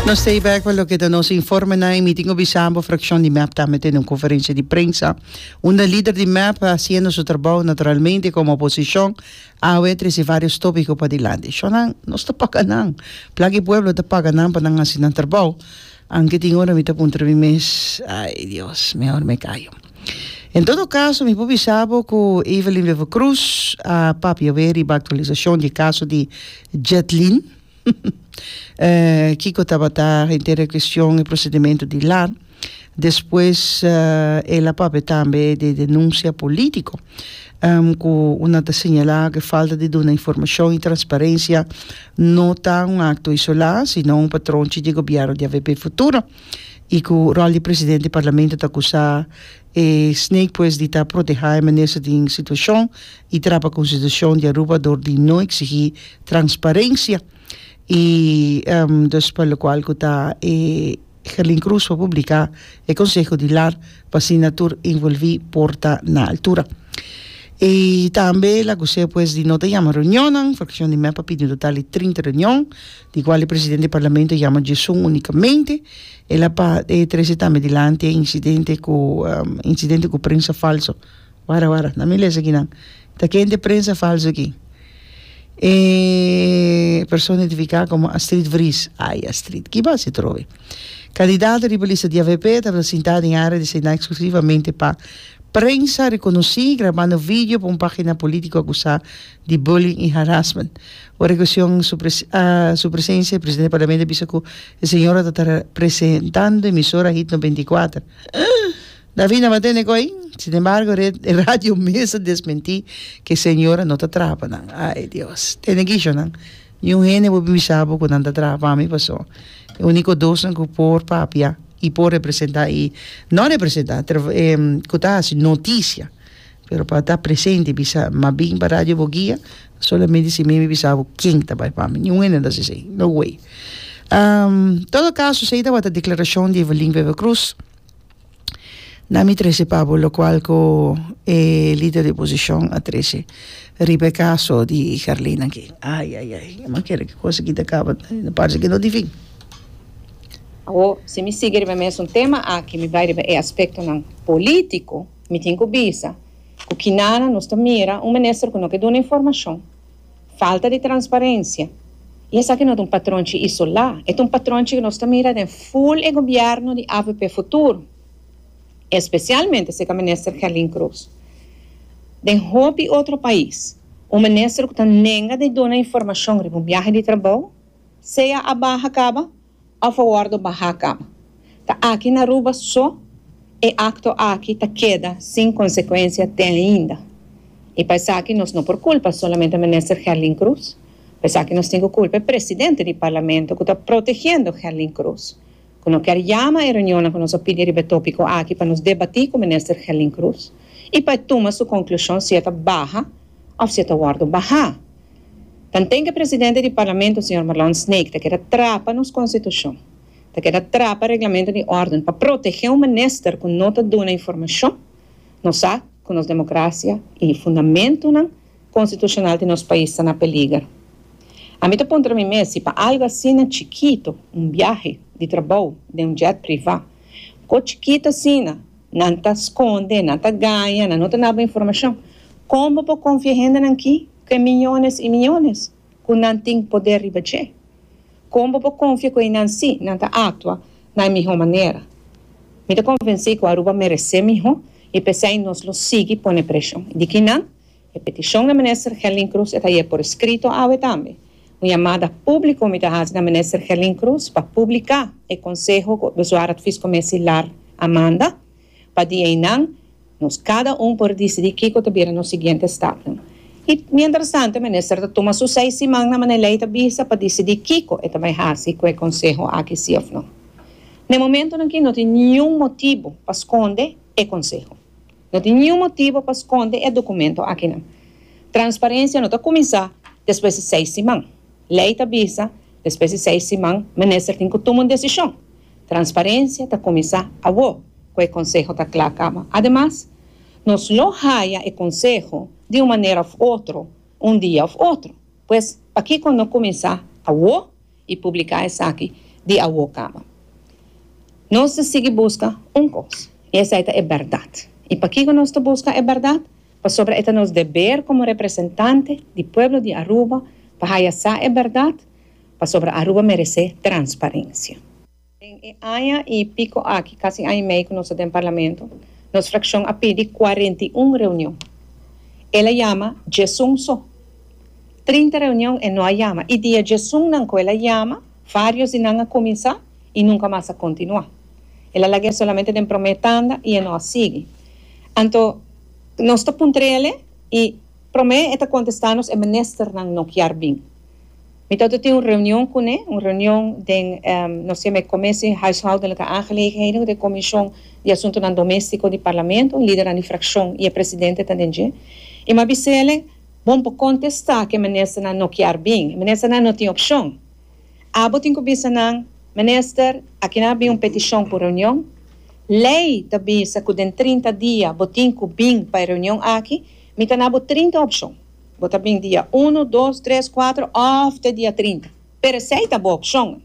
Nos stay back pa loke ta nos informenan y mi tin cu bisa bo fraccion di mep tambe tene un conferencia di prensa unda lider di mep ta haciendo su trabao naturalmente como oposicion awe trece varios topico pa dilanti. Sho nan nos ta paga nan, plaki pueblo ta paga nan pa nan haci nan trabao Anke tin ora mi ta puntra mi mes, Ai Dios, mehor mi kayo. En todo kaso, mi por bisa bo ku Evelyn Wever-Croes a papia awé riba aktualisashon di e kaso di Jetlyn. Kiko tabata henter e kueshon e prosedimentu di lar. Despues el a papia tambe di e denunsia polítiko. ku un a ta señalá ku e falta di duna informashon i transparensia no ta un akto isolá sino un patron chi di gobièrnu di avp futuro i ku ròl di presidente di parlamento ta kusá e snake pues di ta protehá e minister den situashon i trapa konstitushon di Aruba dor di no eksigí transparensia i dus pa lokual ku ta e Herlin Cruz por publica e conseho di lar pa asina tur involvi por ta na altura. Y tambe el acus'é pues di no ta yama reunionnan, fraccion di mep a pidi un total di trinta reunion, di cual e presidente di Parlamento a yama diesun unicamente. El a pa e trece tambe dilanti e incidente cu incidente cu prensa falso. Wara wara, na mi lesa aki nan. Ta ken t'e prensa falso aki? E persona identifica como Astrid Vries. Ay Astrid, ki bo haci trobe? Candidato riba lista di avp tabata sinta den area desina exclusivamente pa prensa reconoci grabando video pa un pagina politico acusa di bullying y harassment. Ora e cuestion su presencia e presidente di parlamento a bisa cu e señora ta ta presentando emisora Hit noventa i kuater. David no bat'e nego'i, sin embargo ret e radio mester desmenti ke señora no ta traha pa nan. Ay Dios! Te negishonan, ni un hende bo bin bisa bo ku nan ta traha pa mi paso e uniko dosnan ku por papia i por representa i no representa ku ta hasi notisia pero pa ta presente bisa ma bin pa radio bo guia solamente si mi mi bisa bo ken ta bai pa mi ni un hende no ta hasi esei no way todo caso esei tabata declaracion di Evelin Wever-Croes. na mi trece pa bo locual cu e lider di oposicion a trece riba e caso di Carlina aki ay ay ay mi a kere cu cosa aki ta caba ta parse que no tin fin. Awo si mi sigui riba e mesun tema aki mi bay riba e aspectonan politico mi tin cu bisa cu kinanan nos ta mira un minister cu no ke duna informacion Falta di transparencia. Y esaki no ta un patronchi isola, e ta un patronchi cu nos ta mira den full e gobierno di avp Futuro, especialmente seca Minister Kerlyn Croes. Den hopi otro pais, un minister cu ta nenga di duna informacion riba un biahe di trabao, sea a baha caba, a favor do baha cama. Ta aki na Aruba so e acto aki ta keda sin consecuencia te ainda. Y pa esaki nos no por culpa solamente Minister Herlin Cruz. Pa esaki nos tin cu culpa e Presidente di Parlamento cu ta protegiendo Herlin Cruz. Cu no kier yama e reunionnan cu nos a pidi riba e topico aki pa nos debati cu Minister Herlin Cruz y pa e tuma su conclusion si e ta baha Of si e ta wòrdu bahá. Tanten ku e presidente di Parlamento, señor Marlon Snaek, ta keda trapa nos Konstitushon, ta keda trapa Reglamento di Òrden pa protegé un minister ku no ta duna informashon, nos sa ku nos demokrasia i fundamentunan konstitushonal di nos pais ta na peliger. Ami ta puntra mi mes si pa algu asina chikitu, un biahe di trabou den un jet privá, kò chikitu asina, Nan ta skonde, nan ta gaña, nan no ta nabo informashon. Kon bo por konfia hendenan ki ku e miñones i miñones ku nan tin poder riba dje? Kon bo por konfia ku einan si nan ta aktua na e mihó manera? Mi ta konvensí ku Aruba meresé mihó i p'esei nos lo sigui pone preshon. I di kinan? E petishon na Minister Gelin Cruz e ta yeg por eskrito awe tambe. Un yamada públiko mi ta hasi na Minister Gelin Cruz pa publiká e konseho ku Bezuar Advies Commissie Lar a manda, pa di einan nos kada un por disidí kiko ta bira nos siguiente stapnan. I mientrastant e Minister ta tuma su seis simannan mané lei ta bisa pa disidí kiko e ta bai hasi ku e konseho aki sí òf no. Na e momentunan aki no tin niun motibu pa skonde e konseho. No tin niun motibu pa skonde e dokumentu akinan. Transparensia no ta kuminsá despues di seis siman. Lei ta bisa, despues di seis siman, minister tin ku tuma un desishon. Transparensia ta kuminsá awo ku e konseho ta kla kaba. Ademas, nos lo haya e konseho di un manera òf otro, un dia òf otro. Pues, pakiko no kuminsá awo? I publiká esaki di awó kaba. Nos ta sigui buska un kos, i esei ta e bèrdat. I pakiko nos ta buska e bèrdat? Pasobra e ta nos deber komo representante di pueblo di Aruba pa haya sa e bèrdat, pasobra Aruba meresé transparensia. Den e aña i pico aki, casi aña i mei cu nos ta den Parlamento, nos fraccion a pidi cuarenta i un reunion. El a yama djesun so. Trinta reunion e no a yama i di e djesunnan cu el a yama, varios di nan a cuminsa i nunca mas a continua. El a lag'e solamente den prome tanda i e no a sigui. Anto, nos ta puntr'ele i prome e ta contesta nos e ministernan no kier bin. Mi ta oto tin un reunion kuné, un reunion den nos ke me komé si huishoudelijke aangelegenheden ku ta e komishon di asuntunan doméstiko di parlamento, lidernan di frakshon i e presidente ta den dje. I mi a bisa elen, Bon por kontestá ku e ministernan no kier bin. E ministernan no tin opshon. Abo tin ku bisa nan, Minister, aki nan a bin un petishon pa un reunion. Lei ta bisa ku den trinta dia bo tin ku bin pa e reunion aki. Mi ta na bo trinta opshon. Bo ta bin dia uno, dos, tres, kuater òf te dia trinta. Pero esei ta bo opshon.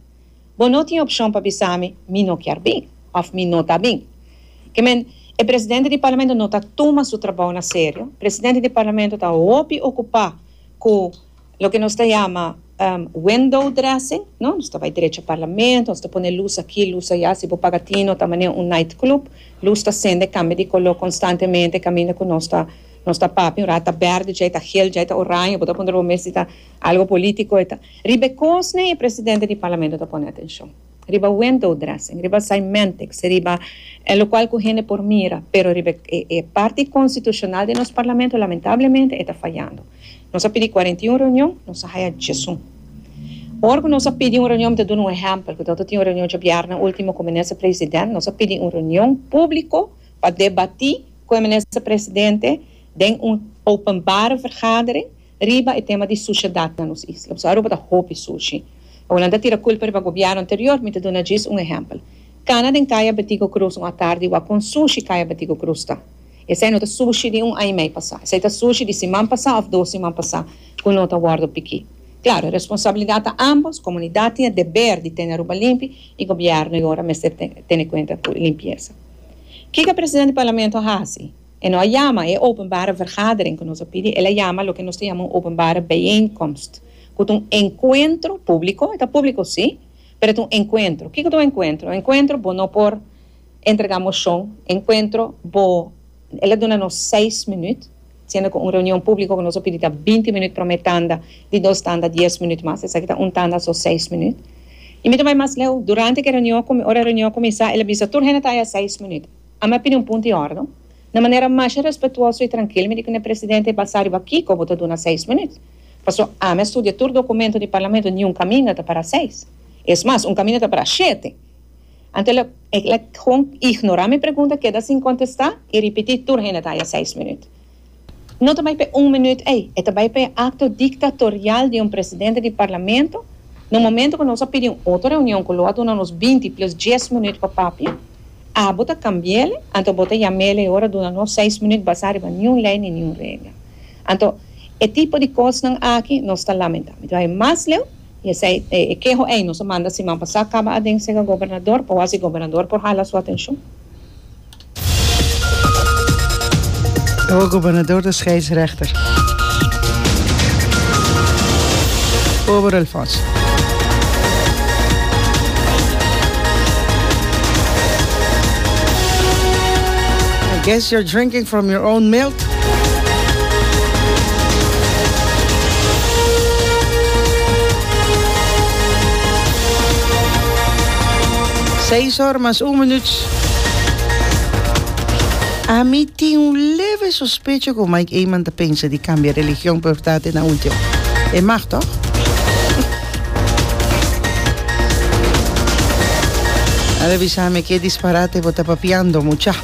Bo no tin opshon pa bisa mi, mi no kier bin òf mi no ta bin. Ke men, e presidente di Parlamento no ta tuma su trabou na serio. Presidente di Parlamento ta hopi okupá ku loke nos ta yama window dressing, no? Nos ta bai drecha Parlamento, nos ta pone lus aki, lus aya. Si bo paga tino ta manera un nightclub. Lus ta sende, kambia di koló konstantemente kaminda ku nos ta. Nos ta papi, un rat ta berde, djei ta gel, djei ta oraño, bo ta puntra bo mes si ta algo politico eta. Riba e cosnan e presidente di Parlamento ta pone atencion. Riba window dressing, riba cymentex, riba e locual cu hende por mira, pero riba e parti constitucional den nos Parlamento lamentablemente e ta fayando. Nos a pidi cuarenta y un reunion, nos a haya djesun. Ora cu nos a pidi un reunion, mi ta duna un ehempel, cu ta tin un reunion djabièrna ultimo cu Minister President, nos a pidi un reunion publico, pa debatí ku e Minister Presidente den un openbare vergadering riba e tema di sushedat na nos isla. Pasobra Aruba ta hopi sushi. E Hulanda ta tira kulpa riba gobièrnu anterior. Mi ta duna djis un ehèmpel. Kana den Kaya Betigo Cruz un atardi wak kon sushi Kaya Betigo Cruz ta. Esei no ta sushi di un aña i mei pasá. Esei ta sushi di siman pasá òf dos siman pasá ku no ta wòrdu pikí. Klaru, e responsabilidat ta ámbos, komunidat tin e deber di tene Aruba limpi i gobièrnu yora mester tene kuenta ku limpiesa. Kiko presidente di parlamento a hasi? E no a yama e openbare vergadering ku nos a pidi, el a yama loke nos ta yama un openbare bijeenkomst, ku ta un enkuentro públiko, e ta públiko si, pero e ta un enkuentro. Kiko ta un enkuentro? Un enkuentro bo no por entregá moshon, enkuentro bo, el a duna nos seis minüt. siendo cu un reunion publico cu nos a pidi ta binti minuut prome tanda, di dos tanda dies minuut mas, esaki ta un tanda so seis minuut. Y mi ta bay mas leu, durante ki reunion cu mi, ora e reunion cuminsa, el a bisa tur hende ta haya seis minuut. Ami a pidi un punto y ordon, na manera masha respetuoso y trankil mi di cu ne presidente basa riba kico bo ta duna seis minuut, pasobra ami a studia tur documento di Parlamento, niun caminda ta para seis, es mas, un caminda ta para shete. Anto el a gewoon ignorá mi pregunta, keda sin kontestá i ripití tur hende ta haya seis minüt. No ta bai p'e un minüt ei, e ta bai p'e akto diktatorial di un presidente di parlamento na un momentu ku nos a pidi un otro reunion ku lo a duna nos binti plus dies minüt pa papia. Abo ta kambi'el, anto bo ta yam'el e ora duna nos seis minüt basá riba niun lei ni niun regla. Anto, e tipo di kosnan aki nos ta lamentá. Mi ta bai mas leu i esei e keho ei nos a manda siman pasá kaba aden sega gobernador pa wak si gobernador por hala su atenshon. Awa gobernador ta scheidsrechter. Pober Alfonso. I guess you're drinking from your own milk. Seis or mas un minuut. Ami tin un leve sospecho cu Mike Eman ta pensa di cambia religion pa ta te na ultimo. E mag toch? A revisa mi ke disparate bo ta papiando mucha.